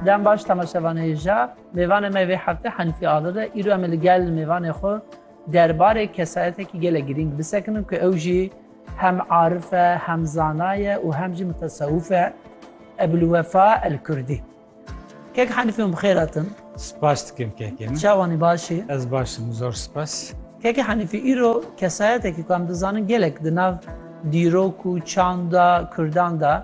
Dem baş temaşevanê ja. Mêvanê me vê heftê Hanîfî Azad e. Îro em ê li gel mêvanê xwe derbarê kesayetekî gelek girîng bisekinin ku ew jî hem arif e, hem zana ye û hem jî mutesewif e. Ebulwefa Elkurdî. Kek Hanîfî hûn bi xêr hatin. Spas dikim kekê min. Çawa nî baş î? Ez baş im, zor spas. Kekê Hanîfî îro kesayetekî ku em dizanin gelek di nav dîrok û çanda Kurdan de,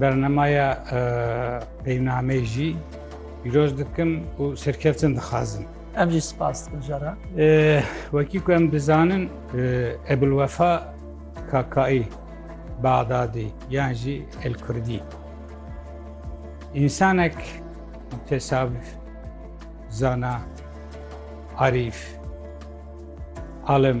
Bernemeya peynameyê jî pîroz dikim û serkeftin dixwazim. Em jî spas dikin jara. Wekî ku em dizanin Ebulwefa Kakaî Baxdadî yan jî El Kurdî. İnsanek tesavvuf, zana, arif, alim,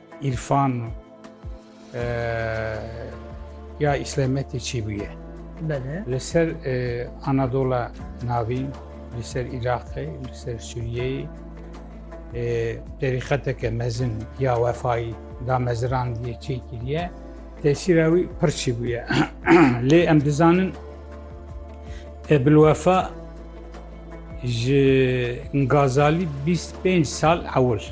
Îrfan ya îslamiyetê çî bûye? Belê. Li ser Anadola navîn, li ser Îraqê, li ser Sûriyeyê terîqeteke mezin ya wefayî da mezirandiye çê kiriye, tesîra wî pir çî bûye. Lê em dizanin Ebilwefa ji Gazalî 25 sal ewil.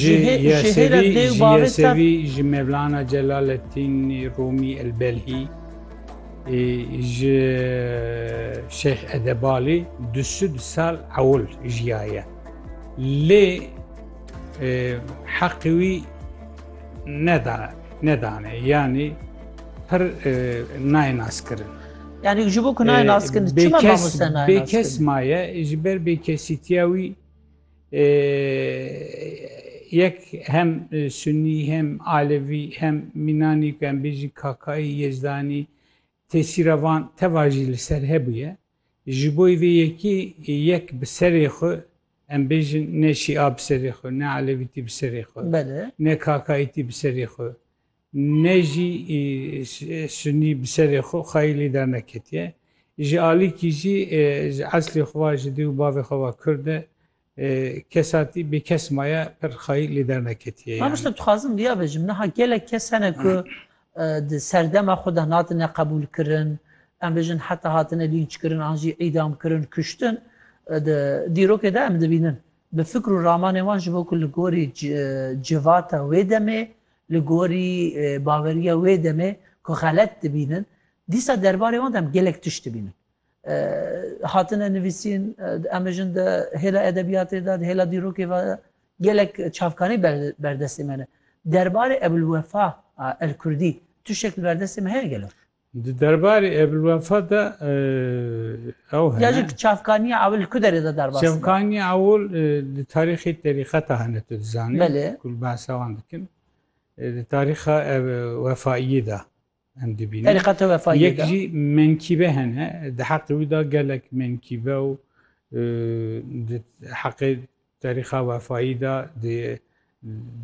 Ji Yesevî Ji Yesevî Ji Mevlana Celaleddînî Rûmî Elbelhî Ji Şeyh Edebalî du sed sal ewil jiyaye. Lê heqê wî nedane yanî pir nayê naskirin. Yani ji bo ku nayê naskirin çima mamoste nayê naskirin? Bêkes maye ji ber bêkesîtiya wî Yek hem Sunnî hem Alevî hem Mînanî ku em bêjî Kakaî, Yezdanî tesîra van teva jî li ser hebûye. Ji bo vê yekî yek bi serê xwe em bêjin ne Şîa bi serê xwe, ne Alevîtî bi serê xwe, ne Kakaîtî bi serê xwe, Ne jî sunî bi serê xwe xayî lê derneketiye. Ji alîkî jî ji eslê xwe ve ji dê û bavê xwe ve kurd e. Kesatî bêkes maye pir xayî lê derneketiye yanî. Mamoste dixwazim vêya bijim, niha gelek kes hene ku di serdema xwe de hatine qebûlkirin, em bijin heta hatine lînçkirin an jî îdamkirin, kuştin di dîrokê de em dibînin. Bi fikr û ramanên wan ji bo ku li gorî civata wê demê Li gorî baweriya wê demê ku xelet dibînin, dîsa derbarê wan de em gelek tişt dibînin. Hatine nivîsîn, em bijin di hêla edebiyatê de, di hêla dîrokê ve de gelek çavkanî berdestê me ne. Derbarê Ebûlwefa El Kurdî tiştek li berdestê me heye gelo? Di derbarê Ebulwefa de ew hene. Ya jî çavkaniya ewil li ku derê de derbas dibe? Çavkaniya ewil di tarîxê terîqeta hene tu dizanî. Belê. Ku li behsa wan dikin. Di tarîxa wefaiyê de em dibînin. Terîqeta wefaiyê de. Yek jî menkîbe hene. Di heqê wî de gelek menkîbe û di heqê Terîxa Wefayî de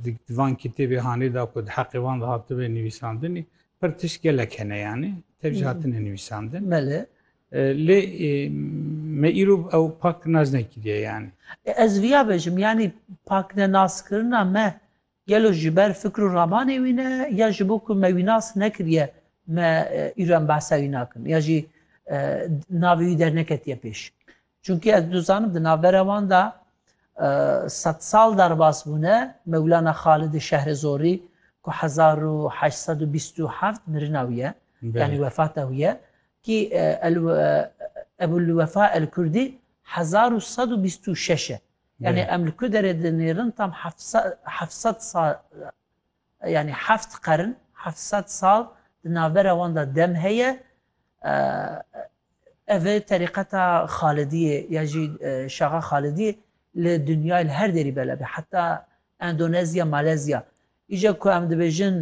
di van kitêbê hanê de ku di heqê wan de hatibê nivîsandinî pir tişt gelek hene yanî tev jî hatine nivîsandin. Belê. Lê me îro ew pak nas nekiriye yanî. Ez viya bêjim yanî paknenaskirina me Gelo ji ber fikr û ramanê wî ne ya ji bo ku me wî nas nekiriye me îro em behsa wî nakin ya jî navê wî derneketiye pêş. Çunkî ez dizanim di navbera wan de sed sal derbas bûne Mewlana Xalidê Şehre Zorî ku hezar û heşt sed û bîst û heft mirina wî ye yanî wefata wî ye kî Ebûlwefa Elkurdî hezar û sed û bîst û şeş e. Yanî em li ku derê dinêrin tam heft sed sal yanî heft qern heft sed sal di navbera wan de dem heye ev ê terîqeta Xalidiyê ya jî Şaxa Xalidiyê li dinyayê li her derî belav e heta Endonezya, Malezya îca ku em dibêjin